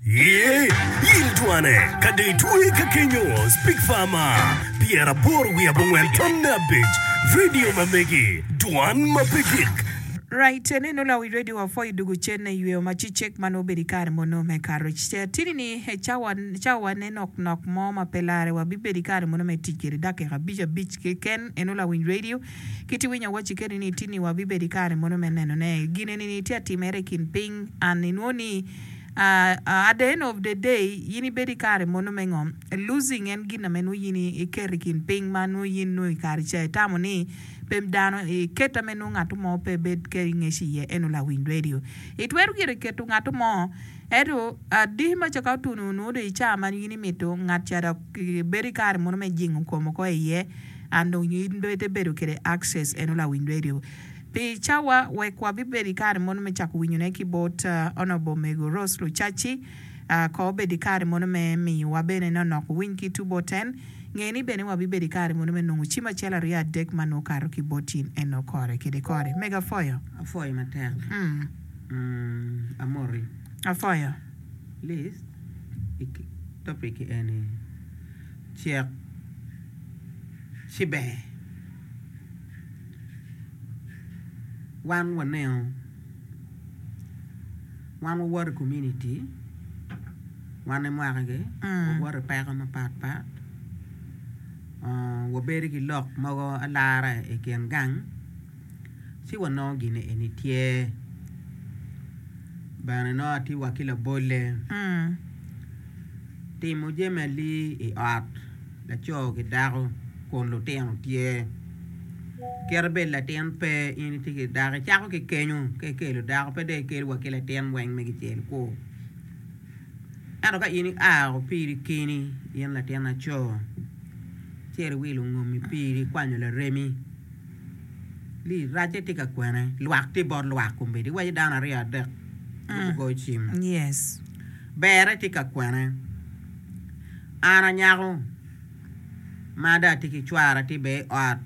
Yee, yil twane, ka dong itweye ka kenyo, Speak Farmer, pyeraboro wiye abongwen tamne abic, Radio ma megi, dwan ma pe gik. Right cen eno la wi radio wa foyi dugu cen ne yweyo ma ci cek ma nongo obedo ikare mono me courage ce atini ni e cawa cawa wa ne nok nok mo ma pe lare wa bibedo ikare mono me tic kede dakika abic abic keken eno la winy radio Kit i winyo wacci keni ni tini wa bibedo i kare mono me neno ne. Gine ni ni tye atimere i kin piny and i nwo ni ah at the end of the day yin i bedo i kare mono me ngo? Losing en gin na me nwo yin i keto i kin piny ma nwo yin nwo i kare ca i tamo ni pe dano i keto ame nwo ngato mo pe bed keri ngec i ye eno lawiny radio. I twero gire i keto ngato mo eto ah diki ma ca ka otuno nwo do i ca ma yin i mito ngat ca dok i bedo i kare mono me jingo kom oko i ye. and onyo in bene ibedo kwede access eno lawiny radio pi cawa wek wa bi bedo ikare mono me cako winyo ne ki bot Honourable Mego Rose Lucaci ko obedo ikare mono me miyo wa bene no nok winy ki tu bot en nge ni bene wa bi bedo ikare mono me nongo cim acel aryo adek ma nwo kato ki bot in eno kore kede kore Mego afoyo. Afoyo matek. Umm amoti. Afoyo. List I topic eni cek. Cibene, wan waneno, wan wawoto i komuniti, wan emwakigi, wawoto i peko mapatpat, wabedo ki lok mogo alara i kin gang ci wanongo gin eni tye bene nongo atye wa ki labolle timo jami ali i ot. laco ki dako kun lutino tye kit bed latin pe in itye ki dako icako ki kenyo ka ikelo dako pe dong ikelo wa ki latin weng me kicel kwo ento ka in ia piri keni in latin laco cito iwilo ngomi piri ikwanyo laremi lii racce tye ka kwene lwak tye bot lwak kombeddi iwaco dano aryo adek gugoyo cim berre tye ka kwene. An anyako ma dong atye ki cwara atye bene i ot,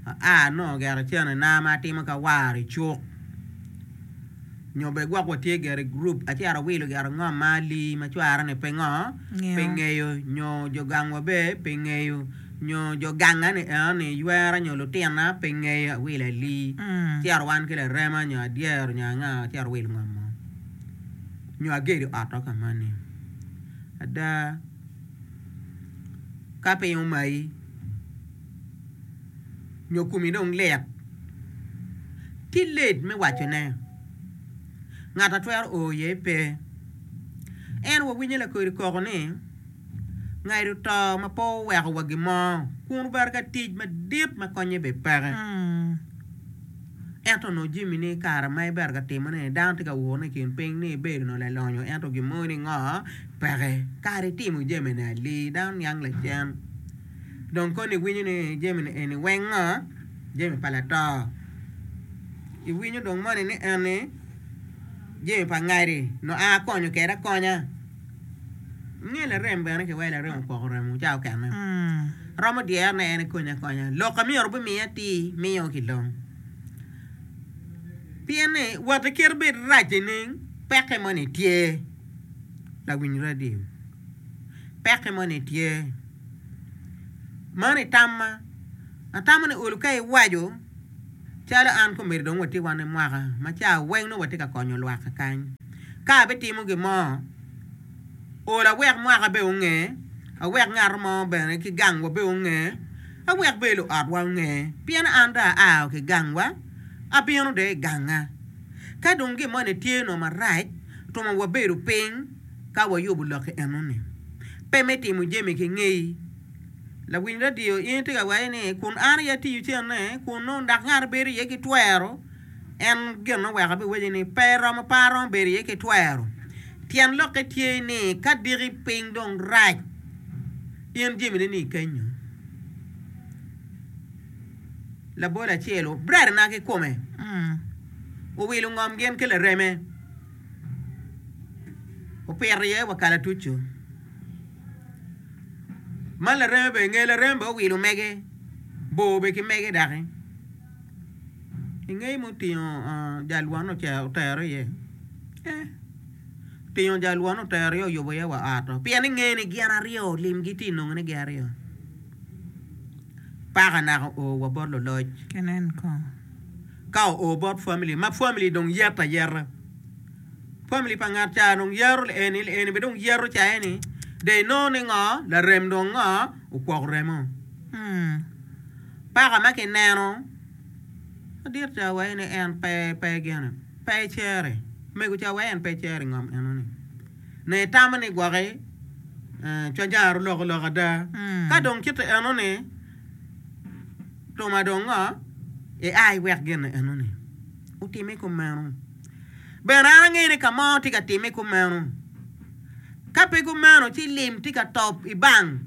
aa anongo gire cenena ma atimo ka awaro i cuk nyo bene gwok watye gire i gurup acito awilo gire ngom ma ali ma cwarane pe ngo pe ngeyo nyo jo gangwa bene pe ngeyo nyo jo gangani enoni ywera nyo lutina pe ngeyo awilo ali acito wan ki larema nyo adyero nyo anga acito awilo ngom mo. nyo agedo oto ka mani ada ka piny omayi nyo komi dong lit, tye let me wacone, ngat a twero o iye pe. Ento wawinyo lakodi koko ni, Ngaido to ma pe owekowa gin mo kun obaro ka tic madit ma konnye bene peke. Ento onongo jami ni i kare ma ibero ka timone ni dano tye ka wurune i kin piny ni ibedo onongo lalonyo ento gin mogo ni ngo peke kara itimo jami ni alii dano niang lacen dong koni iwinyo ni jami ni eni weng ngo jami pa lato iwinyo dong moni ni eni jami pa ngadi onongo a konyo kwede akonya. Nge larem bene ki wai larem opoko remo ca okene romo dyere ne en ekony akonya lok a myero bimiye atir miyo ki long pien ni woti kit bed rac nining peke moni tye lawiny radio peke moni tye mano itamma atamo ni ol ka iwaco Calo an komedo dong watye wan i mwaka ma ca weng nongo watye ka konyo lwak kakany. Ka abitimo gin mo, ola wek mwaka bene onge, awek ngat mo bene ki gangwa bene onge, awek bene luotwa onge. Pien an dong aa ki gangwa, abino dong i ganga. Ka dong gin moni tye nongo marac, twoma wabedo piny ka wayubo lokki enoni. Pe me timo jami ki ngei. Lawiny radio, in itye ka waco ni kun an aye atiyo cente kunnu dok ngat ma bedo iye ki twero en gin ma oweko abiwacci ni pe eromo pe aromo bedo iye ki twero. Tyen lokke tye ni ka diki piny dong rac in jamini ni kenyo. Labol acel obrarina ki kome, owilo ngom gin ki lareme, opito iye wa kalatuco. Man lareme bene, nge larem bene owilo mege, bor bene ki mege doki ingeye ma otingo jal one otero iye eh otingo jal one otero iye oyubo iye wa ot oo pien ni inge ni gin aryo limgi tye inongo ni gin aryo paka naka oo wa bot luloc ka oo bot family ma family dong yet ayeta. Famili pa ngat ca dong yero lieni, lieni bene dong yero caye ni de inongo ni ngo, larem dong ngo, okwoko remo. Hmm. Paka ma kineno madit ca waye ni en pe, pe gene, pe icere. Mego ca waye en pe icere ingom eno ni. Ne itamo ni gwoki eh, cwanyara oloko lok ada. Hmm. Ka dong cito eno ni, tuma dong ngo, i ai wek gene eno ni. Utime kumeno. Bene an angeyo ni ka mo tye ka timme kumeno. Ka pe kumeno, ci lim tye ka top i bang.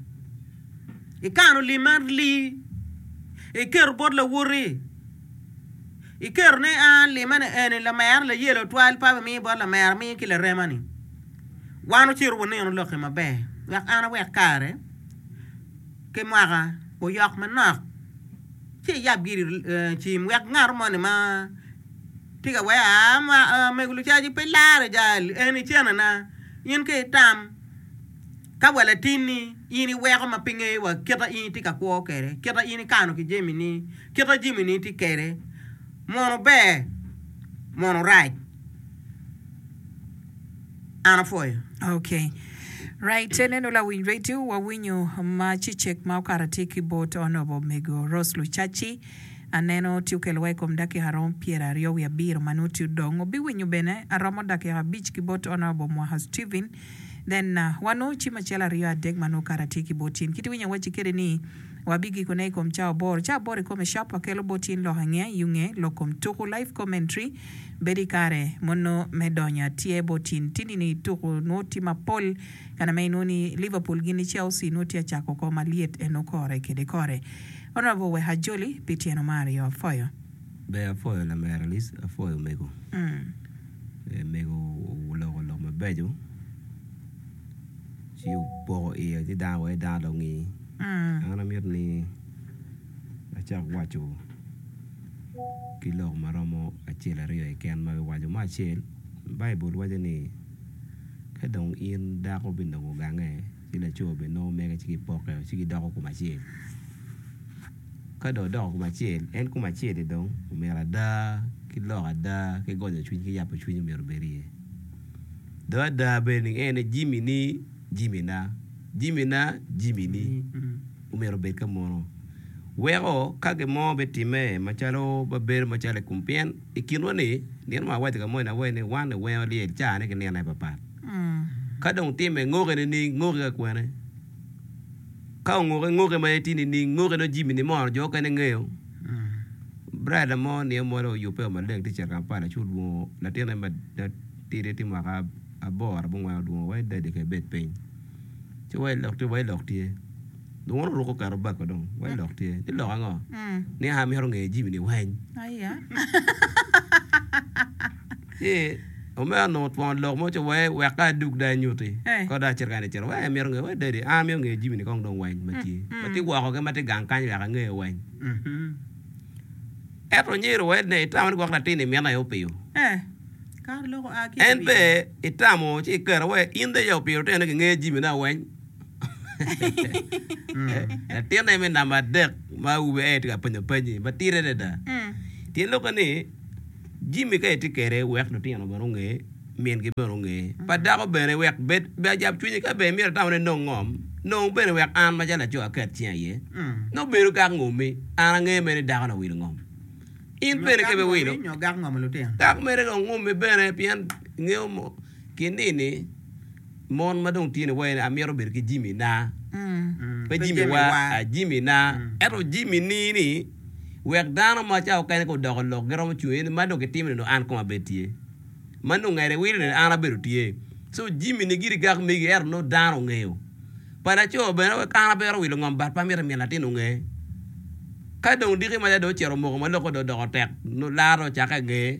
Ikano lim man li, iketo bot lawoti, iketo ni a limene eni lamera layelo twal pa wimiyo bot lamera mi ki laremani. Wan wucito wunino lokki maber wek an awek kare ki mwaka oyok manok ci iyab giri cim wek ngato moni ma Tye ka weko aa, omego lucaci pe laro jal en i cenana. In ka itam ka wa latinni in iweko ma pe ingeyo wa kite in itye ka kwo kwede, kite in ikano ki jamini, kite jamini itye kwede, mono ber mono rac? An apwoyo. Ok. Right te neno lawiny radio wawinyo ma cicek ma okato atye ki bot Honourable omego Rose Lucaci. Aneno ci okelowa i kom dakika romo pyeraryo wiye abiro ma nongo ci odong, obiwinyo bene aromo dakika abic ki bot Honourable Mwaka Steven, then wa nongo ci macel aryo adek ma nongo kare atye ki bot in, kit winyo awacci kedi ni wa bigiko ne i kom ca aboro, ca aboro ikome sharp akelo bot in lok ange, yunge, lok kom tuku, live commentary, bedo i kare mono me donyo atye bot in, ti nino i tuku nongo ti mapol kare ma inongo ni Liverpool gini Chelsea nongo tye acako oko malyet eno kore kede kore. Orobo wek ajoli pi tyeno ma aryo apwoyo. Ber apwoyo lamera Alice apwoyo omego ee mego oloko lok mabeco ci opoko iye ci dano weko dano dong ngi an amito ni acak waco ki lok ma romo acel aryo keken ma biwaco me acel Baibul waco ni ka dong in dako binongo gange ki laco bene nongo mege ci gipokke ci gidoko kom acel ka dong odoko kom acel en kom acel-li dong omyero ada ki lok ada ki gonyo cwiny ki yabo cwiny omyero obed iye dong ada bene ni en aye jami-ni jamina, jamina jamini omyero obed ka muno weko ka gin mo bitimme macalo ma bedo macalo i kom pien i kinwa-ni nino ma awaco ka moni ni wan i wengo lyel cane ki nino aye papat. Ka dong timme ngoke nining? Ngoke ka kwene? Ka ongoke ngoke ma en tye nining? Ngoke dong jami ni mono jo okene ngeyo. Brada mo nio mo dong oyubbe o maleng tye cito Kampala ci olwongo latinne ma tidi tye mwaka aboro abongwen olwongo wa i dadi ka ibed piny ci wa ilok tye wa ilok tye. Dwon oruko kato bako dong. Wai lok tye. Ni lok ango? Ni a mito ngeyo jimi ni weny. Ni omera nongo twongo lok mo ci wai wek ka adug da anyuti. Ko da acito kani cito. Wai amito ngeyo. Wai daddy a mito ngeyo jimi ni kong dong weny ma tye. Ma tye woko ke ma tye gang kany wek angeyo weny. Eto nyero wai ne itamo ni gwok latin ni mine aye opiyo. En pe itamo ci ikero wai in dong iya opiyo lutino ni gingeyo jimi na weny. Latinne me namba adek ma awobi aye tye ka penyo penyi madit adada. Tye lubbe ni Jimmy ka itye kwede wek lutino bene onge, mingi bene onge. Pa dako bene wek bed bed ajab cwinyi ka bene imito itamone inong ngom, nong bene wek an macalo laco aket cinga iye. Nongo bedo gak ngomi, an angeyo mere ni dako ni owilo ngom. In bene ka biwilo, gak mere dong ngomi bene pien ingeyo mo kinini. Mon ma dong tini wayo ni, Amito bedo ki jami na. Pe jami wa, jami na. Ento jami ni ni, wek dano ma ca okene ka odoko lok giromo cung iye ni ma dong kitimo ni dong an kong abed tye. Ma nongo ngede wilo ni an abedo tye. So jami ni giri gak megi ento nongo dano ongeyo. Pa laco bene wek an abero wilo ngom but pe amito myel latin onge. Ka dong diki maca dong ocito omoko ma lokke dong odoko tek, lar dong ocakke ngeye,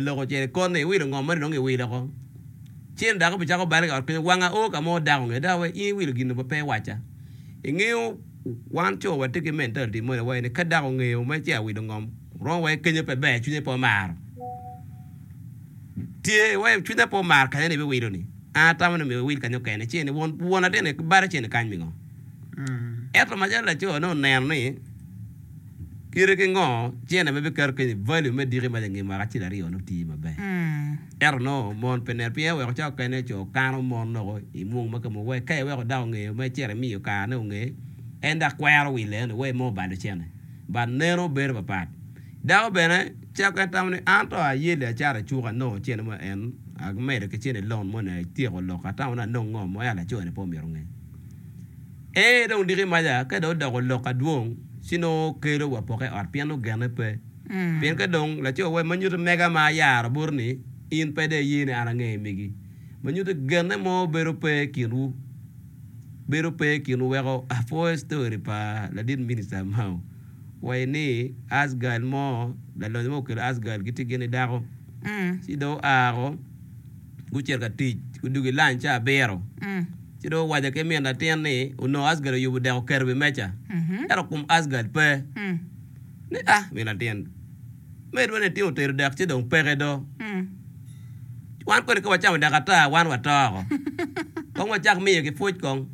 lok ocito ikot ni iwilo ngom mani dong iwilo ko. Ci en dako bicako bal i ot kenyo, wanga oo ka mo dako nge dako wai in iwilo gin nongo pe iwaca. Ingeyo wan coo watye ki mentality moni wai ni ka dako ongeyo mere ci awilo ngom romo wai kenyo pe ber cwinye pe omaro tye wai cwinya pe omaro kanya ni ibiwilo ni an atamo ni myero iwil kanya okene ci en won latin ni balo cen kany mingo. Ento macalo lacoo ne oneno ni kite ki ngo ci en aye bikato kenyo value me diki mac ange mwaka acel aryo nongo tiyo maber. Ento nongo mon pe neno. Pien eweko ca okene co kano mon loko i mung ma kemo wek ka iweko dako ngeyo ma icito imiyo karane onge, en dok kwero wi leno wek imo balo cente. But neno bedo papat. Dako bene cako en tamo ni an to aye li acato icuk anongo cente mo en amedo ki cente loan mo ni atyeko lok atamo ni anong ngo mo ento laco ni pe omito nge. Ee dong diki maca ka dong odoko lok adwong ci nongo kelo wa poke i ot pien nongo gene pe. Pien ka dong laco wai ma nyuto mega ma ayaro boti ni in pe dong iye ni an ange megi, ma nyuto genne mo bedo pe i kinwu, bedo pe i kinwu weko apwoyo story pa ladit minister Mao wai ni us girl mo lalonyo mo okelo us girl gitye gin ni dako ci dong oa woko gucito ka tic gudwogo i lunch ca abiro ci dong owaco ki min latin ni onongo us girl oyubo dek oketo i wi meja ento kom us girl pe. Ni, Ah, min latin, medwa ni itye otedo dek ci dong peke do. Wan kodi ka wacamo dek ata, wan wato oko. Kong wacak miyo ki pwoc kong.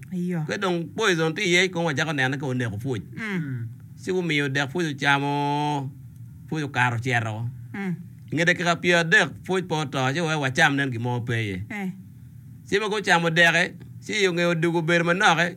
Ka dong poison tye iye, kong wacako nene ka oneko pwoc. Ci wumiyo dek pwoc ocamo, pwoc okato ocito oko. I nge dakika pyer adek pwoc pe oto, ci waweko wacam nen gin mo pe iye. Ci ma gucamo deki, ci i nge odiko obedo manoki.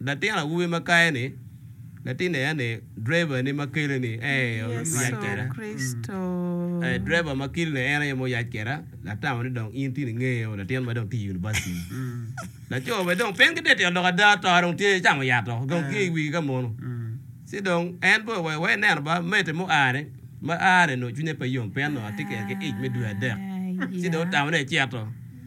Latin awobi ma kayo ni, Latin ea ni, driver ni ma kele ni ee oyac keda. Ee driver ma kili ni en aye ma oyac keda, atamo ni dong in tye ni ngeye o latin ma dong tye i University ni. Laco be dong piny ki detel dok ada to dong tye icamo yat o dong tye i wigi ka mono. Ci dong en be owe wa ineno ba mete mo aa ni, ma aa ni nongo cwinye pe yom pien nongo atye kede ki ic me dwe adek. Ci dong otamo ni ecito.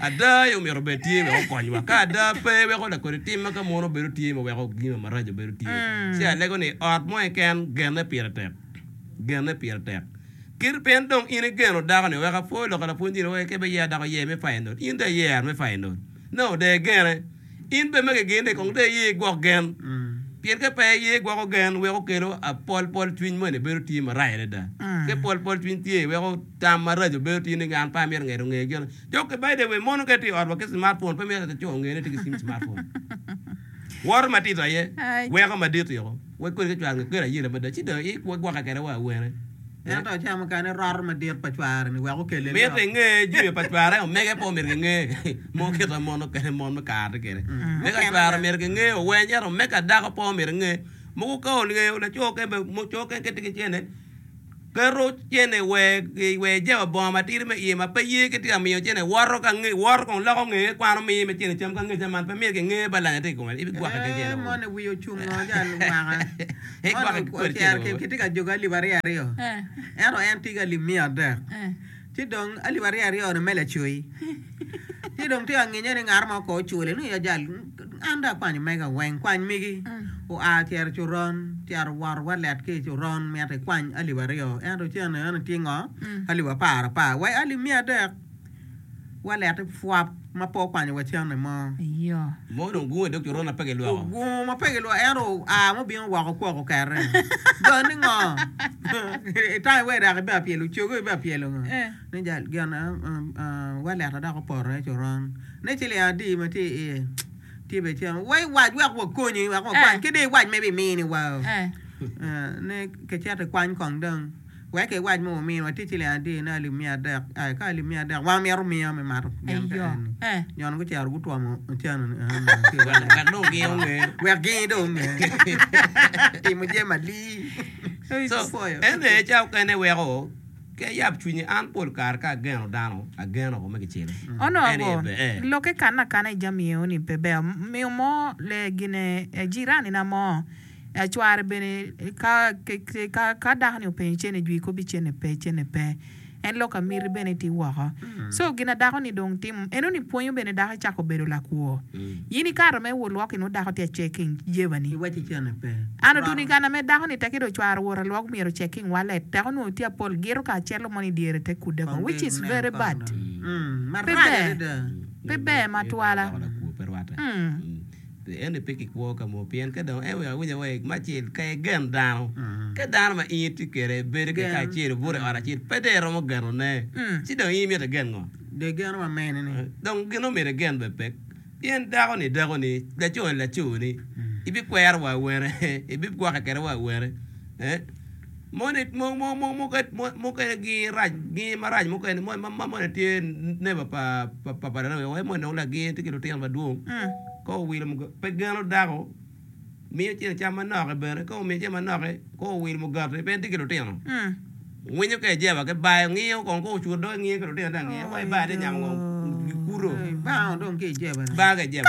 Ada aye omyero obed tye wek okonywa. Ka ada pe, weko lakodi tim ma ka mono bedo tye ma weko gino maraco bedo tye. Ci alego ni, Ot mo keken genne pire tek. Genne pire tek. Kit pien dong in igeno dako-ni, wek apor lok a lapwonnyini wek eke beyer dako yer me payonot, in dong iyer me payonot. Nongo dong egene. In bed ma giginde kong dong iye igwok gen, pien ka pe iye igwoko gen, weko kelo apolpol cwiny moni bedo tye marac adada. Ka ipolpol cwiny tye, weko tam maraco bedo tye ni an pe amito ngeto nge gin. Jo ki by the way mono ka itye i otwa ki smartphone pe myero laco onge ni itye ki cim smartphone. Woto matito aye, weko madit yoko. wek kodi ka cware onge kweri ayela mada, ci dong igwokke kwede wa awene. Ento acamo mukene roto madit pa cware-ni wek okelle lok. Mitte inge jami pa cware, omege pe omyero kinge mo kit ma mon mukene mon me kare-ni tye kwede. Omege pa cware omyero kinge oweny, ento omege pa dako pe omyero enye. Mogo ka ongeyo laco kene, co keken tye ki cente, keto cene wer jabo bongo matidi me iye ma pe ye ki tye ka miyo cene woto ka nge woto kong loko nge kwano miyo me cene cam ka nge cam man pe myero ki nge ba lanya tye i kome i gwake ki cene moni wiye ocung ngo jal mwaka moni ocero ki tye ka joge alip aryo aryo ento en tye ki alip miya adek. Ci dong alip aryo aryo-nu me lacoyi. Ci dong tye anginya ni ngat mo ko ocule ni ajal, an dong akwanyo omega weng. Kwany migi. Oa ocito i coron, ocito owoto walet ki i coron mito ikwany alip aryo. Ento ci aneno ni tye ngo? Alip apar apar. Wa i alip miya adek. Walette pwop. ma pe okwanyo wa cene mo. Mo dong gungo i dog coron ma pe gilwoko. Ogungo ma pe gilwoko ento oa ma obino woko okwoko kere. Got ni ngo? Itang iwe dok ibea pyelo cogo ibea pyelo ngo? Ni jal gin wa leta dok opoto aye coron. Ni ciling adi ma tye iye? Tye bene cene. Wa iwac wek wakonyi wek wakwany ki dong iwac ma ibimini wa. Ni kicito ikwany kong dong. Wek iwac ma wuminiwa tic i leng adyerine alip miya adek, ai, ka alip miya adek, wan omito omiya me mato gen ka enni. Jon gucito gutwomo ocanoni aa malo ki i wanga, wek dong gin onge, wek gin dong onge timo jami malii. So, en aye ca okene weko ki ayab cwinyi. An pol kare ka ageno dano, ageno woko me kicele. Onongo lokke kanna kana i jami eoni pe ber. Miyo mo lee gine, jiranina mo, Acware bene ka dako ni openyo cene jwi kobi cene pe cene pe en lok amiti bene ti woko so gina dako ni dong timo eno ni pwonyo bene dako ecako bedo lakwo in ikato me wot lwok inwo dako ti a checking jeba ni an otuni gana me dako ni teki do cware owota lwok myero checking wallet tek onwo ti apol gito ka celo mo ni dyere te kude ko which is very bad pe ber pe ber matwala. Ento pe kikwo ka mo, pien ka dong eweko awic awec me acel, ka igen dano, ka dano ma in itye kwede bedo keke acel, obuto i ot acel, pe dong iromo genone, ci dong in imito igen ngo? Dong igeno wa mene-ni? Dong gin ma omyero igen bene pe, pien dako-ni dakoni, laco-ni laconi, ibikwero wa awene, ibigwokke kwede wa awene. Moni mukene gingi marac mukene ma moni tye neba pa papa dano wek moni dong lagingi tye ki lutino madwong ka owilo pe geno dako miyo cene cam manok bene ka omiyo cene manok ka owilo mugati bene tye ki lutino winyo ka ijeba ki bayo ngiyo kong ka ocuto doge ngiyo ki lutino dong angiyo waci bayo tye nyamo kong gikuto banga dong ki ijeba banga ki ijeba.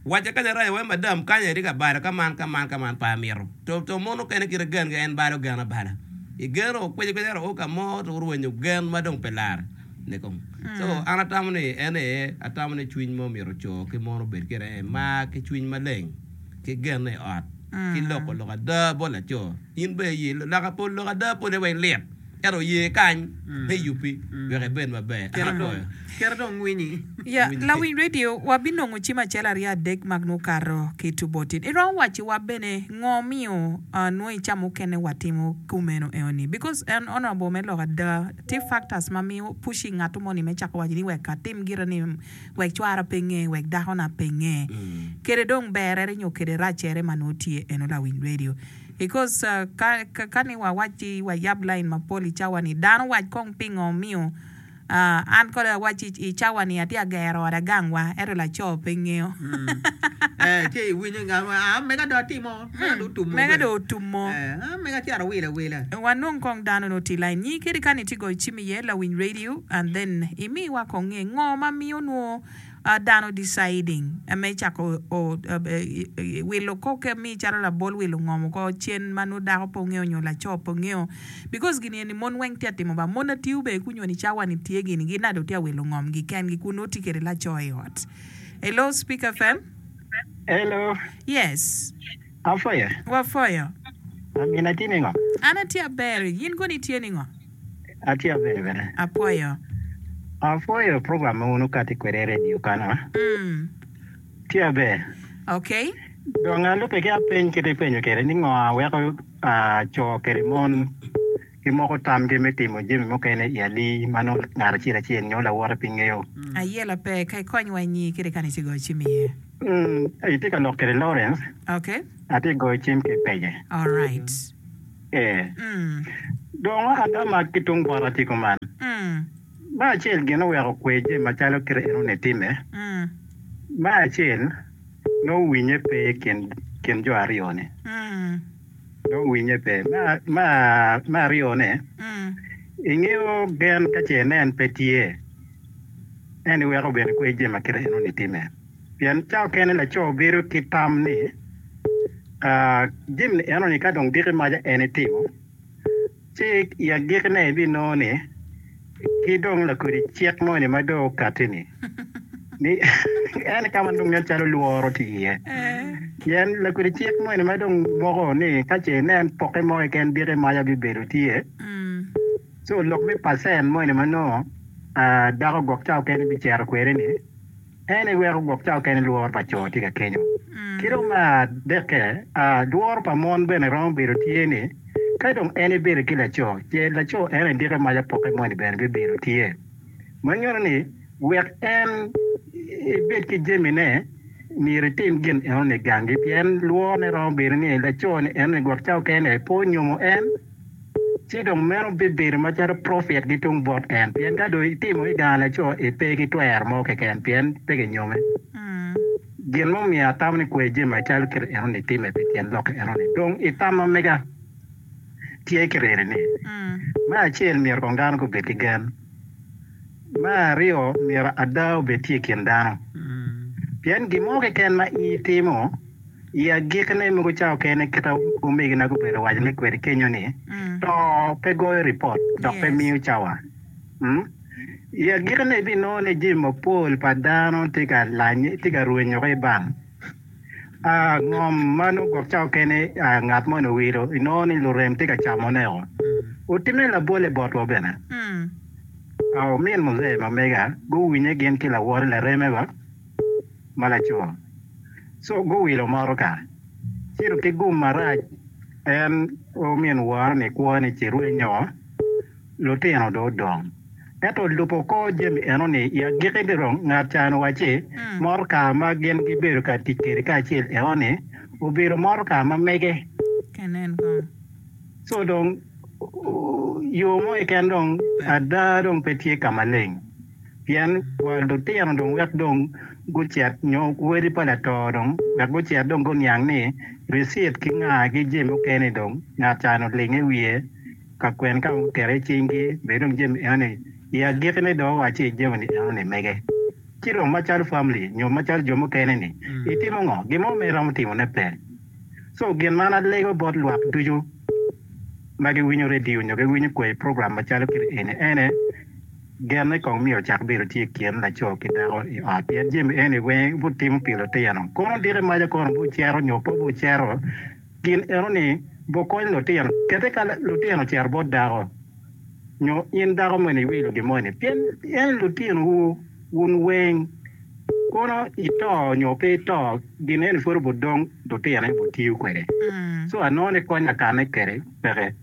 Wacce kanya rayo wai madam kanya itye ka balo ka man ka man ka man pa amito to to mon okene kite gen gi en balo gen abala i gen o kwici kwici ento o ka mo to orwenyo gen ma dong pe lar ne kong so an atamo ni en aye atamo ni cwiny mo myero co ki mon obed kede aye mar ki cwiny maleng ki gene i ot ki loko lok ada bot laco in bene i ye lok lok ada pole wai lit. Ento ye kany me yubbi wek ibed maber. Kit ma dong kite dong winyi. Ya, lawiny radio, wabinongo cim acel aryo adek ma nongo okato ki tubotin. Iromo wacciwa bene ngo omiyo nongo icamo mukene watimo kumeno eo ni? Because an honourable me lok ada, tye factors ma miyo pushing ngat mo ni me cako waco ni wek atim gire ni wek cwara pe nge, wek dakona pe nge. Kede dong berere nyo kede racere ma nongo tye eno lawiny radio. Because ka ni wawac ci wayab lain mapol i cawa ni, dano wac kong pingo omiyo an kodi awac ci i cawa ni atye ka gero ot agang wa ento laco pe ngeyo. Eh, ci iwinyo ngat mo, ah, mega do atimo, mega do otumo. Mega do otumo. Eh, ah, mega cito awilo awila. Wanong kong dano ni oti lain nyi kadi ka ni tye goyo cim iye lawiny radio and then imiwa kong nge ngo ma miyo nwo Dano deciding me cako wilo kor kemi calo labol wilo ngomo kor cen ma nongo dako pe ongeyo nyo laco pe ongeyo because gini eni mon weng tye ka timo ba mon atiyo bene kunyo ni cawa ni tye gini gi nado tye ka wilo ngom gi ken gi kun nongo tye kwede laco i ot. Hello speak FM. Hello. Yes. Apwoyo. Wapwoyo. Amin, atye ningo? An atye aber, in kono itye ningo? Atye aber bene. Apwoyo. Apwoyo program ma wun wukati kwede i redio kany-nu. Mm. Tye aber. Okay. Dong alube ki apeny kite ipenyo kede ni ngo a weko co kede mon? Gimoko tamgi me timo jami mukene i alii ma nongo ngat acel acel nyo lawote pe ngeyo. Aye lape, ka ikonywa inyi kede kani ci goyo cim iye. Itye ka lok kede Lawrence. Okay. Atye goyo cim ki pege. Alright. Ee. Dong waka ta ma ki tung bota tye kuman. Me acel gin oweko kwer jami macalo kite en one time. Me acel nongo winye pe ikin jo aryo ni. Dong winye pe. Me aryone, ingeyo gen ka ce nen pe tye, en iweko bene kwec jami ma kit enoni timme. Pien cawa kene laco bedo ki tam ni, Jami enoni ka dong diki maca en itimo, Ci i agikkine ibinongo ni, ki dong lakodi cik moni ma dong okatti-ni, ni en i ka ma nonge calo lworo tye iye. Pien lakodi cik moni ma dong moko ni ka ce inen pokke mo keken diki maca bibedo tye, ci olok me pacen moni ma nongo dako gwok cawa kene bicito kwede-ni, En aye weko gwok cawa kene lworo pa co tye ka kenyo. Ki dong me adekke, lworo pa mon bene romo bedo tye ni ka dong en ebedo ki laco, ce laco en aye dike mac apokke moni bene bibedo tye. Ma nyuto ni wek en ebed ki jamine, myero etim gin enoni gangi pien lworone romo bedo ni laco-ni enoni gwok cawa kene pe onyomo en. Ci dong meno bibedo macalo profit gitung bot en, pien ka dong itimo i gang laco i pe ki twero mo keken, pien pe ginyomi. Gin ma omiyo atamo ni kwer jami macalo kit eno ni time pi tyen lok eno ni, dong i tam ma mega tye ki reni ni, me acel myero kong dano gubed ki gen, me aryo myero ada obed tye i kin dano, pien gin mo keken ma in itimo, I agikki-ni, mogo ca okene kit ma omegina gubedo ka wacone kwede kenyo ni, To pe goyo ripot dok pe miyo cawa. I agikki-ni, ibinongo ni jami mapol pa dano tye ka lanye, tye ka rwenyo ki i bang. Ngom ma nongo gwok ca okene ngat moni owilo, inongo ni lurem tye ka camoneo. Otimme labolle botwa bene. Omin Muzee ma mega guwinye gin ki lawote lareme ba? ma laco, co guwilo motoka cito ki gum marac en omin woro ni kwo ni ci rwenyo lutino do odong ento olubo kor jami eno ni i agiki ni dong ngat ca ni wacci motoka ma gin gi bedo ka tic kede ka acel eno ni obedo motoka ma mege co dong yo mo keken dong ada dong pe tye ka maleng. pien kwar lutino dong wek dong gucit nyo wadi pa lator dong wek gucit dong guniang ni risit ki nga ki jami mukene-ni dong ngat can olingo i wiye ka kwene ka ma guketo i cingi be dong jami enoni i agikine dong wacci jami-ni enoni mege. Ci dong macalo famli nyo macalo jo mukene-ni itimo ngo? Gin mo ma iromo timone pe. So gin man alego bot lwak ducu ma giwinyo redio nyo giwinyo kwai program macalo kit eni ene, Genne kong myero ocak bedo tye i kin laco ki dako i ot, pien jami eni weng butimo pi lutino. Kono diki maca kono bucero nyo pe bucero? Gin enoni bukony lutino. Kadi ka lutino ocito bot dako, nyo in dako moni iwilo gin moni, pien en lutinowu wun weng. Kono ito nyo pe ito, gin eni pud obudong lutino, en obutiyo kwede. Co anongo ni kony akane kwede peke.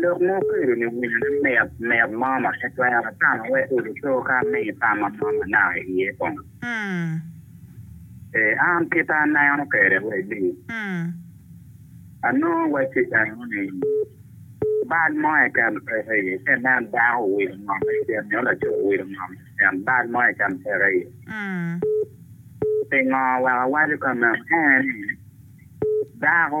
Lok mo okedo ni winyo ni mit, mit mo ma pe twero tamo wek odi co ka mi tamma mo ma naka iye kong. Ee, an kita aneno kede wai li. Anongo wacci dano ni bal mo eken peke iye ci inen dako owilo ngom i cen nyo laco owilo ngom i cen bal mo eken peke iye. Pingo wek awaco ka meno en ni dako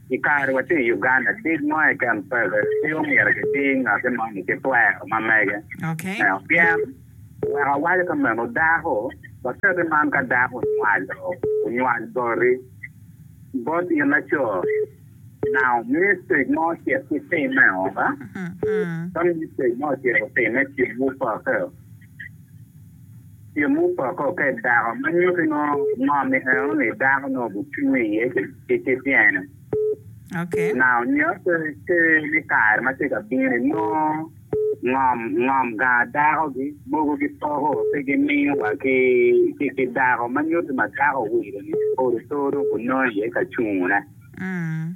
I kare wa tye i Uganda, tic mo keken peke, pe omyero kiti ngati moni ki twero ma mege me ot. Pien, wek awaco ka meno, dako, waketi man ka dako onywalo, onywal boti, bot in laco, now mistake mo ocit ci timme o, ka mistake mo ocit otimme, cik wu peke o. Tyeng mupoko ka i dako ma nyuto ingo ngo mi eno ni dako nongo gucwinyo iye ki ki tyene. Okay. Now nyuto ki ni kare ma tye ka bino ni nongo ngom ngom ganga dako gi mogo gi poko pe gi miyo wa ki ki ki dako ma nyuto ma dako owilo ni odo too dong gunongo iye ka cungo ne. Mm.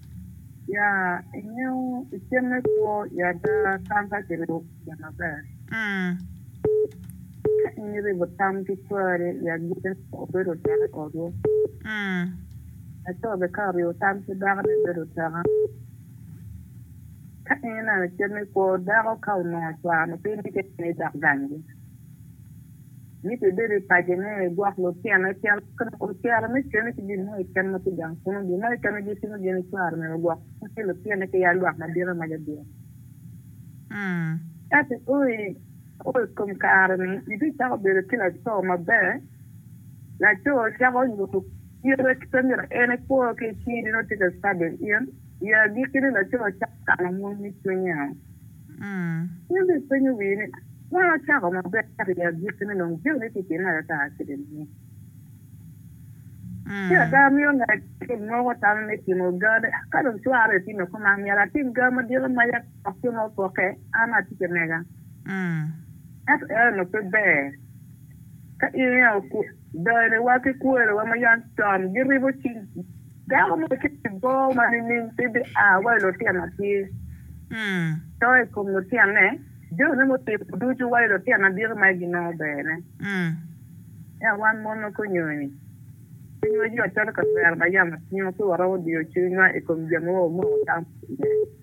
Ya ingeyo icen me kwo i ada tam ka kiribo kwede maber. Ka in iribo tam ki cwari i agikki ni obedo tek i otwu. Laco bene ka oribo tam ki dakone bedo tek ango? Ka in ineno cen me kwo, dako ka onongo cware mapiny ni keken aye dok ganggi. Yecu obedo i paco mo nyo i gwok lutino icel mo ka dok ocito me cene ki gin mo keken ma tye gang kunnu. Gin mo keken ma gitimo gin icwaro nino gwok kunnu ki lutine ki yal lwak madite ma gabino. Ka ki o i kom kare-ni, Yecu cako bedo ki laco maber. Laco cako nyuto kite ki pe myero en ekwo ki i cing-gi nyo tika icado in? I agikki-ni laco cako kano mony me cwinye. In ri ipenyo wii ni, 'Wun wucako maber ento i agikki ni nongo jami ni tye kene ata kede ni? Ci ada amio ngat acel moko tam me timo ga ni, Ka dong cwara bene tye me koma, myero atim ga madito ma yam lok jo mogo pokke, an atic amega. Ento eno pe ber. Ka in i ot, dayniwa ki kwerewa ma yam con giribo cing, Dako mo ci bibor ma nining ci bia wa i lutino tye to i kom lutinone jone mutimo ducu wa i lutino aditi ma ginongo berne ento wan mon ma kunyoni cwinywa yot calo kawero ma yamo cwinyo ci waromo diyo cwinywa i kom jami ma wamoko tam iye.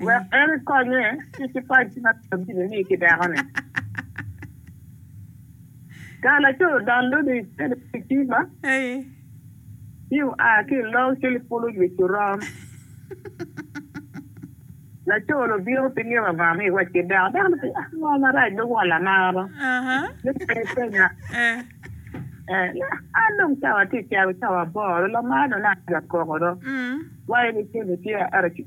wek en ekonye ki cipaci ma bino bino ni ki dekone. Ka laco odonno ni icel i kicima, ci oa ki i lok cel ipulo jwi Coron. Laco ni obino pi nino anga mi iwac ki dako, dako ni pe ah ngo marac dong walla amaro me penyi penya. An dong cawa tye calo cawa aboro, lamar dong naka aja koko do, wa in icen ice.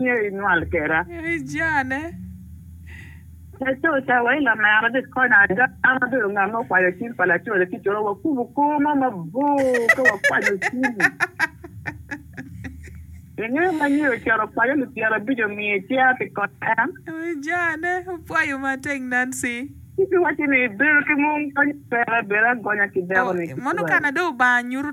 Myero inywal keda. Myero ijane. Laco cawa i lamera dit kony ada. An abedo nga ma okwanyo cim pa laco laticce wa wakubo kor mo mabor ka wakwanyo cim. Ingeyo ma nyi ocito okwanyo lip pyera abic omiyo icer pi konyo en. Myero ijane. Opwayo ma teng Nancy. Ci ki wacci ni ibedo ki mung kony pera bed agonya ki dako ni. Mono kana dong Lubanga nyuto